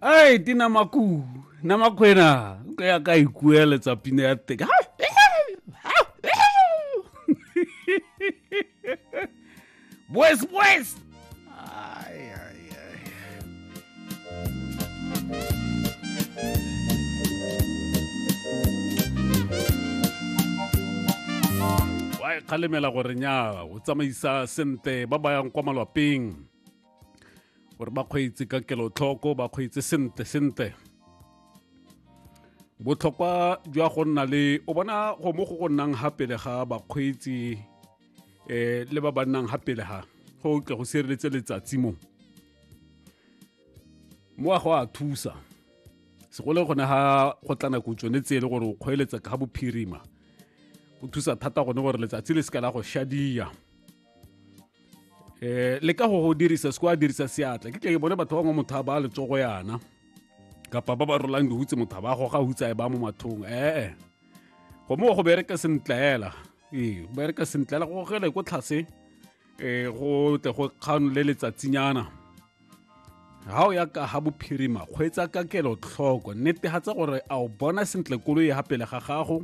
ai ti na maku na makwena ka ya ka ikuela tsa pina ya teka boys boys ai ai ai wa e kgalemela gore nya o tsamaisa sente ba ba yang kwa malwapeng gore ba kgweetse ka kelotlhoko ba kgweetse sentle sentle botlhokwa jwa go nna le o bona go mo go go nnang ga pele ga bakgweetsi um le ba ba nnang ga pele ga go tle go sireletse letsatsi mo mo a go a thusa segolo gone ga go tla nako tsone tse e le gore o kgweeletsa ka bophirima go thusa thata gone gore letsatsi le se ka la go shadia eh le ka go go dirisa se kwa dirisa seatla ke tle ke bone batho ba ngwe motho a ba letsogo yana kapa ba ba rolang dihutse motho ba goga hutsa e ba mo mathong ee go mo go bereka sentlela ee go bereka sentlela go gele ko tlhase um go tle go kgano le letsatsinyana ga o ya ka ga bophirima kgweetsa ka kelotlhoko netegatsa gore a o bona sentle koloi ya ga pele ga gago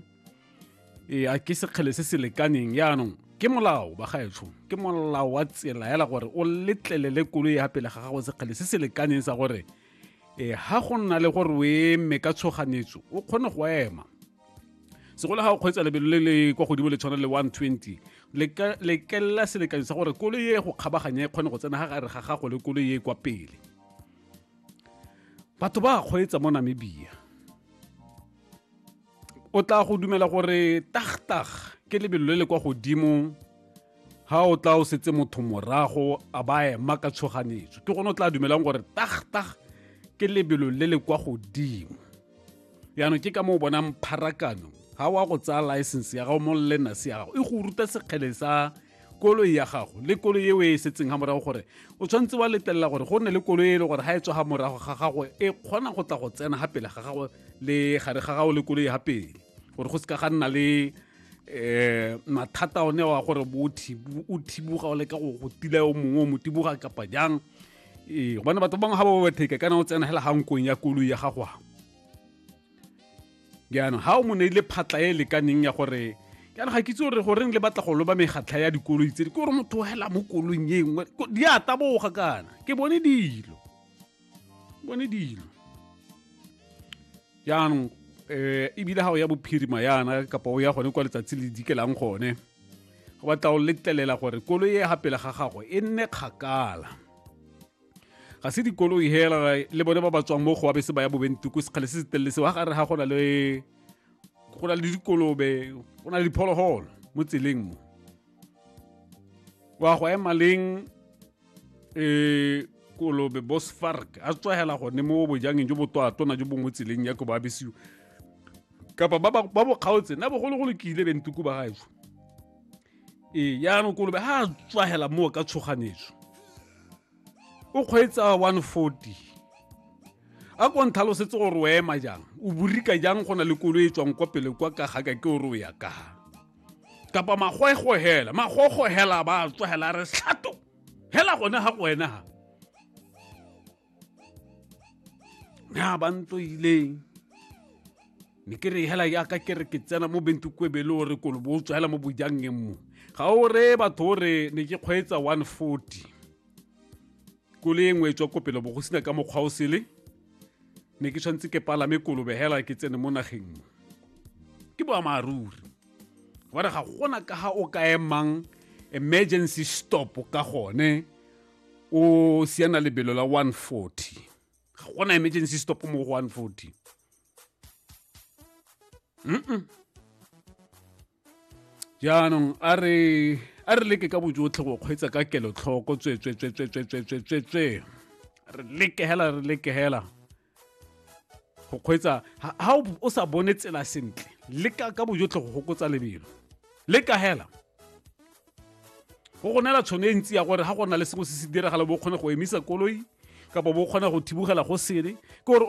ee a ke sekgele se se lekaneng yaanong ke molao bagaetsho ke molao wa tsela ela gore o letlelele koloi ya pele ga gago sekgele se se lekaneng sa gore e ha go nna le gore o eme ka tshoganetso o kgone go ema segolo ga o kgweetsa lebelo le le kwa godimo le tshwana le 120 lekelela selekanyo sa gore koloi e go kgabaganya e kgone go tsena ga gare ga gago le koloi e kwa pele batho ba kgweetsa mo namibia o tla go dumela gore tagtag ke lebelo le le kwa godimo ha o tla o setse motho morago a ba ema ka tshoganetso ke gone o tla dumelang gore tagtag ke lebelo le le kwa godimo yaanong ke ka mo o bonang pharakano ha wa go tsaya license ya gago mo lena se ya gago e go ruta sekgele sa koloi ya gago le koloi e o e setseng ga morago gore o tshwanetse wa letelela gore go nne le koloi e le gore ga e tswa ga morago ga gago e kgona go tla go tsena ga pele ga gago le gare ga gago le koloi ga pele gore go se ka ga nna le eh mathata one wa gore bo o thibuga o leka go go tila o mongwe o mo tibuga kapa jang ee gobane batho bangwe ga ba overtake kana o tsena fela ga nkong ya koloi ya gago jaanong ga o mo neile phatla e lekaneng ya gore kana ga ke itse gore goreng le batla go loba megatlha ya dikoloi tse di ke gore motho hela mo kolong e nngwe di a taboga kana ke bone dilo bone dilo jaanong um ebile ga o ya bophirima yana kapa o ya gone kwa letsatsi le dikelang gone go batla o letlelela gore koloi e ga pele ga gago e nne kgakala ga se dikoloi hela le bone ba ba tswang mo go abese ba ya bobenti ko sekgale se se telele se wa gare ga go na le go na le dikolobe go na le diphologolo mo tseleng mo wa go ema leng um kolobe bosfark a tswagela gone mo bojangeng jo botwatona jo bongwe tseleng ya ko ba abesiwa kapa ba bo kgaotse na bogologolo ke ile bentuku ba gaetsho ee yaanong kolobe ga a tswagela moo ka tshoganetso o kgweetsa 140 a ko ntlhalosetse gore o ema jang o borika jang go na le kolo e tswang kwa pele kwa ka gaka ke ore o ya ka kapa magoego hela magogo hela ba tswagela re tlhato hela gone ga go wena ga ya ba ntoileng ne ke re hela yaka ke re ke tsena mo bentukwebele o re kolo bo o tswa hela mo bojangeng mo ga o re batho o re ne ke kgweetsa 140 kole e nngwe e tswa ko pele bo go sena ka mokgwa o sele ne ke tshwanetse ke palame kolobe hela ke tsene mo nageng mo ke boammaaruri gobane ga gona ka ga o ka emang emergency stop ka gone o siana lebelo la 140 ga gona emergency stop mo go 140 mm jaanong a re a re leke ka bojotlhe go kgweetsa ka kelotlhoko tswetswetswetswetswetswetswe re leke hela re leke hela go kgweetsa ha o sa bone tsela sentle le ka ka bojotlhe go gokotsa lebelo le ka hela go go neela tšhono e ntsi ya gore ga go na le sengwe se se diragala bo kgone go emisa koloi kapa bo kgona go thibogela go sele ke gore